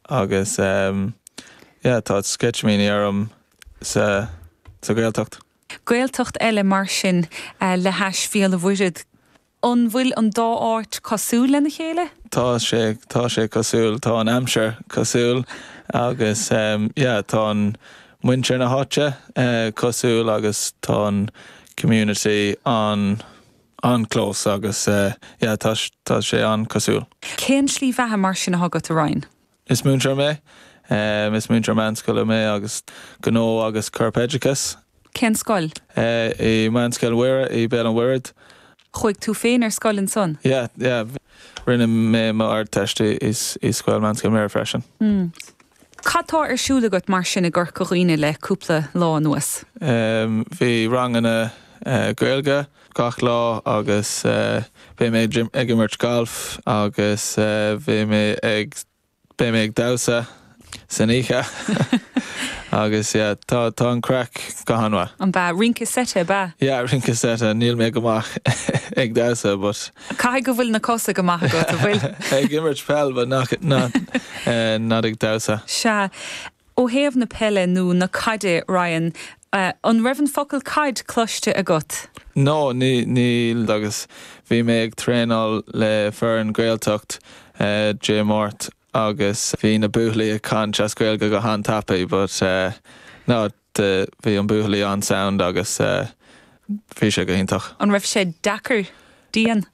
Agus ehm yeah tá sceitimíní orm as an Gaeltacht. Gaeltacht eile mar sin le hais Bhéal an Mhuirthead. An bhfuil an dá áit cosúil lena chéile? Tá sé tá sé cosúil. Tá an aimsir cosúil agus ehm yeah tá an muintir na háite eh cosúil agus tá an community an an-close agus yeah tá sé an-chosúil. Cén tslí bheatha mar sin atá agat, a Ryan? Is múinteoir mé. Is múinteoir meánscoile mé agus gnó agus corpoideachas. Cén scoil? I Meánscoil Mhuire i Béal an Mhuirthead. Chuaigh tú féin ar scoil ansan? Yeah, yeah. Rinne mé m'Ardteist i scoil Meánscoil Mhuire freisin. Cad tá ar siúl agat mar sin i gCorca Dhuibhne le cúpla lá anuas? Bhí ranganna Gaeilge gach lá agus beidh mé ag imirt gailf agus beidh mé ag beidh mé ag damhsa san oíche agus yeah tá tá an craic go han-mhaith. Rince seite, ab ea? Yeah, rince seite, níl mé go maith ag damhsa but. Caithfidh go bhfuil na cosa go maith agat, an bhfuil? Ag imirt peil but nach, not, not ag damhsa. Sea, ó thaobh na peile nó na caide, Ryan, an raibh an focal caid cloiste agat? No, ní, níl agus bhí mé ag traenáil le foireann Gaeltacht Dé Máirt agus bhí na buachaillí ag caint as Gaeilge go han-tapaidh but, not. de, bhí an buachaillí an-sound agus bhí sé go hiontach. An raibh sé deacair, dian?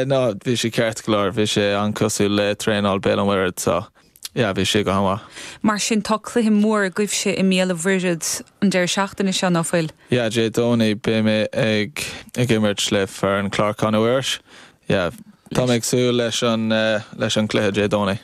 No, bhí sé ceart go leor, bhí sé an-cosúil le traenáil Béal an Mhuirthead so yeah, bhí sé go han-mhaith. Mar sin, tá cluiche mór agaibhse i mBéal an Mhuirthead an deireadh seachtaine seo, ná fuil? Yeah, Dé Domhnaigh beidh mé ag imirt le foireann Clár Chlainne Mhuiris, Yeah, tá mé ag súil leis an, leis an cluiche Dé Domhnaigh.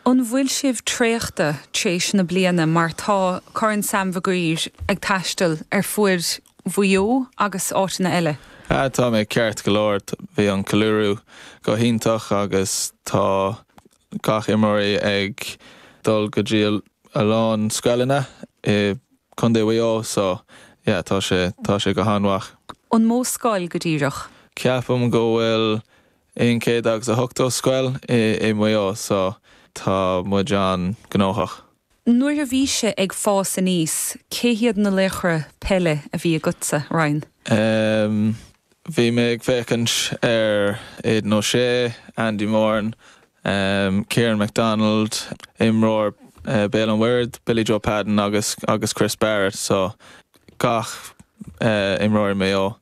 An bhfuil sibh traochta tréis na bliana mar tá Corn Sam Maguire ag taisteal ar fuaid Mhaigh Eo agus áiteanna eile? Ah, tá mé ceart go leor. Bhí an ceiliúradh go hiontach agus tá gach imreoirí ag dul go dtí a lán scoileanna i Contae Mhaigh Eo so yeah tá sé tá sé go han-mhaith. An mó scoil go díreach? Ceapaim go bhfuil aon céad agus a hochtó scoil i Maigh Eo so tá muid an-gnóthach. Nuair a bhís-se ag fás aníos, cé hiad na laochra peile a bhí agatsa, Ryan? Ehm. bhí mé ag féachaint ar Aidan O'Shea, Andy Moran, ehm. Ciaran McDonald, imreoir Béal an Mhuirthead, Billy Joe Padden agus agus Chris Barrett, so gach eh imreoir i Maigh Eo.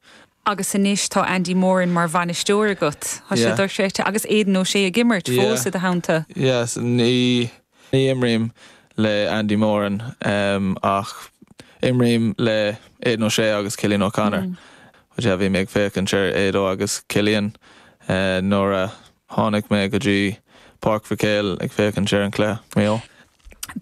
agus anois tá Andy Moran mar bhainisteoir agat, tá sé dochreidte, agus Aidan O'Shea ag imirt fós i do theannta. Yes, ní imrím le Andy Moran ach imrím le Aidan O'Shea agus Cillian O'Connor. Bhí mé ag féachaint ar Ado agus Cillian nuair a tháinig mé go dtí Páirc Mhic Éil ag féachaint ar an cluiche.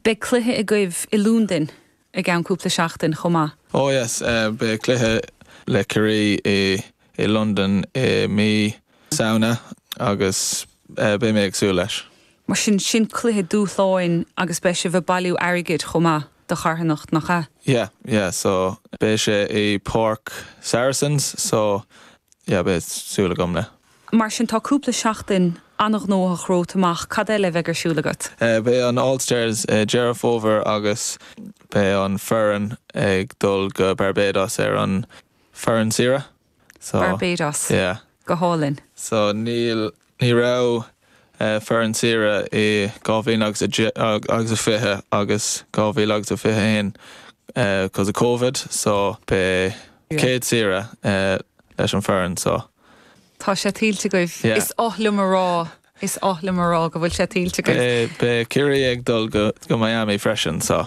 Beidh cluiche agaibh i Londain i gceann cúpla seachtain chomh maith. Oh yes, beidh cluiche le Ciarraí i Londain i mí Samhna agus beidh mé ag súil leis. Mar sin, sin cluiche dúshláin agus beidh sibh ag bailiú airgid chomh maith do charthanacht, nach ea? Yeah, yeah, so beidh sé i Páirc Saracens, so yeah, beidh súil agam le. Mar sin, tá cúpla seachtain an-ghnóthach romhat amach. Cad eile a bheidh ar siúl agat? Beidh an All Stars Deireadh Fómhair agus beidh an foireann ag dul go Barbados ar an foireann saoire. So, Barbados. yeah. Go hálainn. So, níl, ní raibh foireann saoire i 2000 agus a fiche agus 2000 agus a fiche haon 'cause of Covid so beidh céad saoire leis an fhoireann so. Tá sé tuillte agaibh. Is oth liom a rá, is oth liom a rá go bhfuil sé tuillte agaibh. Beidh Ciarraí ag dul go Miami freisin so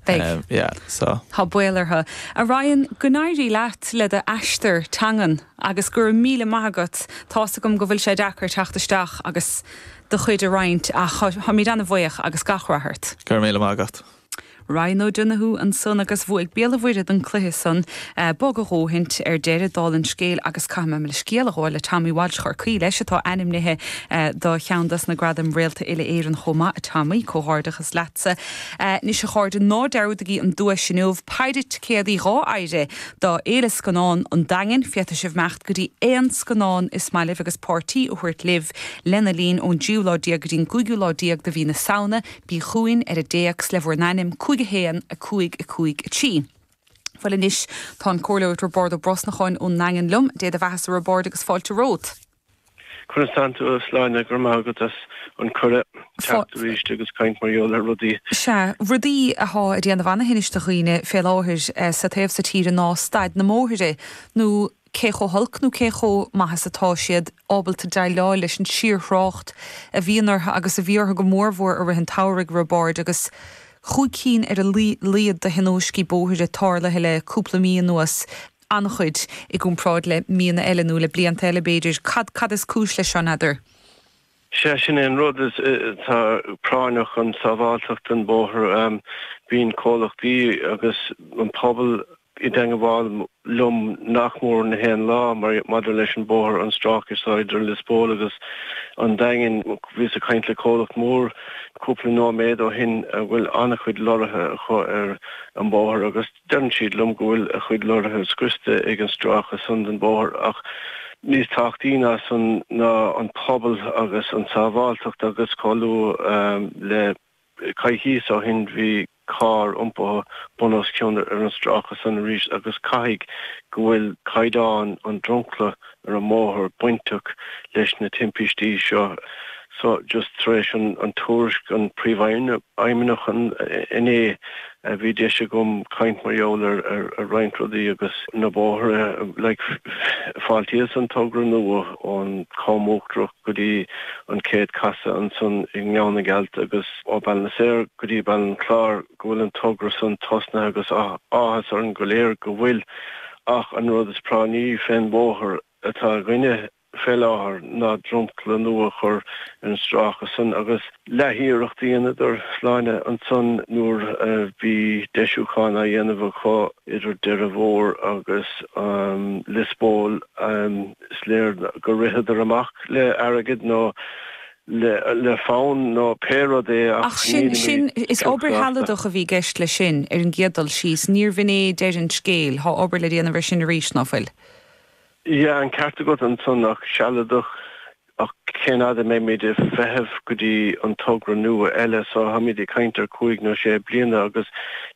beidh yeah so. Tá baol orthu. A Ryan, go n-éirí leat le do aistear teangan agus go raibh míle maith agat. Tá's agam go bhfuil sé deacair teacht isteach agus do chuid a roinnt ach táimid ana-bhuíoch agus gach rath ort. Go raibh míle maith agat. Ryan O'Donoghue ansan agus bhuaigh Béal a' Mhuirthead an cluiche san. Bog a dhóthain ar deireadh, dála an scéil, agus caithfidh mé mo leithscéal a ghabháil le Tommy Walsh Chorcaí, leis, atá ainmnithe do cheann dos na gradaim Réalta Uile-Éireann chomh maith, a Tommy, comhghairdeachas leatsa. Anois a chairde, ná dearúdaigí an duais inniu, péire ticéadaí d'áirithe do Fhéile Scannán an Daingin, féadfaidh sibh imeacht go dtí aon scannán is maith libh agus páirtí a thabhairt libh lena linn ón dtríú lá déag go dtí an gcúigiú lá déag de mhí na Samhna, Bí chughainn ar an dtéacs le bhur n-ainm 5 1 5 5 3. Bhuel anois, tá an comhairleoir Roibeárd Ó Brosnacháin ón nDaingean liom. Dé bheathasa a Roibeaird agus fáilte romhat. Conas atá tú a Shláine? Go raibh maith agat as an cuireadh teacht isteach agus caint mar gheall ar rudaí. Sea, rudaí athá ag déanamh ana-thinnis do dhaoine fé láthair sa taobh so tíre ná staid na mbóithre nó. cé chomh holc nó cé chomh maith is atá siad ábalta déileáil leis an síorthrácht a bhíonn orthu agus a bhí orthu go mórmhór i rith an tsamhraidh a Roibeaird agus cúig cinn ar a laghad de thionóiscí bóthair tarlaithe le cúpla mí anuas, an-chuid i gcomparáid le míonna eile nó le blianta eile b'fhéidir. Cad, cad is cúis leis seo, n'fheadar? Sea, sin é an rud, is atá práinneach an tsábháilteacht den bóthar. Bíonn comhlachtaí agus an pobal i dteangabháil liom nach mór na haon lá maidir leis an bóthar, an stráice seo idir Lios Póil agus an Daingean. Bhíos ag caint le comhlacht mór cúpla nóiméad ó shin a bhfuil an-chuid lorraithe acu ar an mbóthar agus deireann siad liom go bhfuil a chuid lorraithe scriosta ag an stráice san den bhóthar ach níos tábhachtaí ná san ná an pobal agus an tsábháilteacht agus chomh luath le coicís ó shin bhí carr iompaithe bun os cionn ar an stráice san arís agus caithfidh go bhfuil caighdeán an dromchla ar an mbóthar bainteach leis na timpistí seo so just tar éis an tuairisc an príomhfheidhmeannach inné bhí deis agam caint mar gheall ar roinnt rudaí agus na bóithre like fáiltíos an togra nua ón Com Uachtarach. go dtí an chéad chasadh ansan i nGleann na Gealt agus ó Baile na Saor go dtí Baile an Chláir go bhfuil an togra san tosnaithe agus áthas orainn go léir go bhfuil ach an rud is práinní fén mbóthar atá againne fé láthair ná dromchla nua a chur ar an stráice san agus leath-iarracht a dheineadar Sláine ansan nuair a bhí deisiúchán á dhéanamh acu idir Doire Mhór agus Lios Póil. Is léir gur ritheadar amach le airgead nó le fonn nó pé rud é ach nílimid cinnte as. Ach sin, is obair shealadach a bhí i gceist leis sin, ar an gcéad dul síos. Níorbh in é deireadh an scéil. Tá obair le déanamh ar sin arís, ná fuil? Yeah, an ceart agat ansan, ach sealadach, ach cén fhad a mbeimid ag feitheamh go dtí an togra nua eile? So, táimid ag caint ar chúig nó sé bliana agus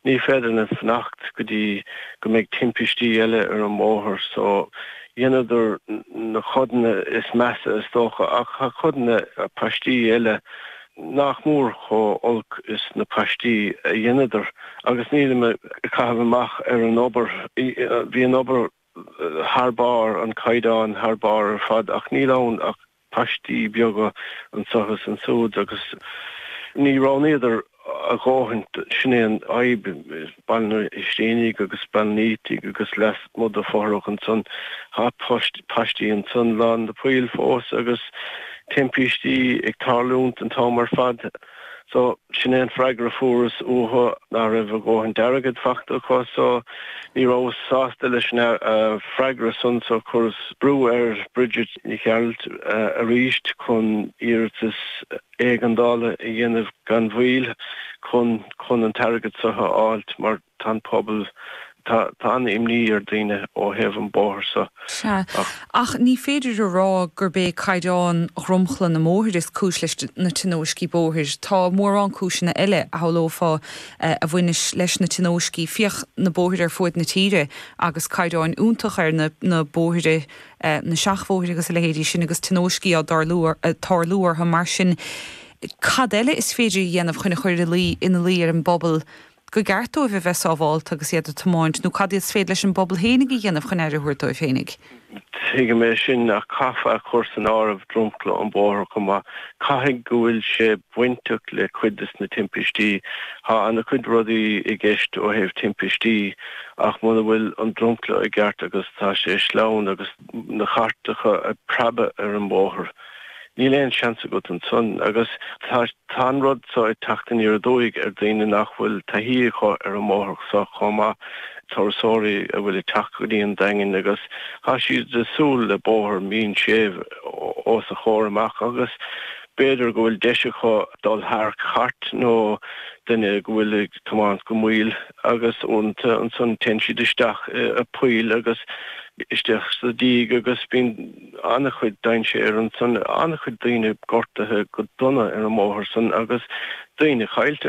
ní féidir linn fanacht go dtí go mbeidh timpistí eile ar an mbóthar. So, Dheineadar na codanna is measa is dócha, ach tá codanna paistí eile nach mór chomh olc is na paistí a dheineadar, agus nílim ag caitheamh amach ar an obair, bhí an obair thar barr, an caighdeán thar barr ar fad, ach níl ann ach paistí beaga anseo is ansúid agus ní roghnaíodar a dhóthain, sin é an fhadhb, Baile an Ístínigh agus Baile an Fhaoitigh agus leasmuigh de Fothrach ansan tá paistí ansan lán de phoill fós agus timpistí ag tarlúint an t-am ar fad. So, sin é an freagra a fuaireas uathu, ná raibh a dhóthain d'airgead fachta acu. So, ní rabhas sásta leis an freagra san so chuireas brú ar Bridget Nic Ghearailt arís chun iarratas éigeandála a dhéanamh gan mhoill chun chun an t-airgead so a fháilt mar, Tá an pobal, tá, tá an-imní ar daoine ó thaobh an bóthar seo, Sea. ach. Ach ní féidir a rá gurb é caighdeán dromchla na mbóithre is cúis leis na tionóiscí bóthair. Tá mórán cúiseanna eile, a shamhlófá, a bhaineas leis na tionóiscí, féach na bóithre ar fuaid na tíre agus caighdeáin iontach ar na, na bóithre, na seachbhóithre agus a leithéidí sin agus tionóiscí á dtarlú, tarlú orthu. Mar sin cad eile is féidir a dhéanamh chun a chur ina luí ar an bpobal go go gceart dóibh a bheith sábhálta agus iad ag tiomáint, nó cad is féidir leis an bpobal féinig a dhéanamh chun aire a thabhairt dóibh féinig? Tuigim é sin, ach caithfear a chur san áireamh dromchla an bhóthair chomh maith. Caithfidh go bhfuil sé bainteach le cuid de na timpistí. Tá an-chuid rudaí i gceist ó thaobh timpistí, ach muna bhfuil an dromchla i gceart agus tá sé sleamhain agus na cairteacha ag preabadh ar an mbóthar, Níl aon seans agat ansan agus tá an rud so ag teacht aniar aduaidh ar daoine nach bhfuil taithí acu ar an mbóthar so chomh maith, turasóirí a bhfuil ag teacht go dtí an Daingean agus tá siad ag súil le bóthar mín séimh os a gcomhair amach agus b'fhéidir go bhfuil deis acu dul thar chairt nó duine go bhfuil ag tiomáint go mall agus uaireanta ansan téann siad isteach i poill agus isteach sa díog agus bíonn an-chuid dainséir ansan, an-chuid daoine gortaithe go dona ar an mbóthar san agus daoine caillte.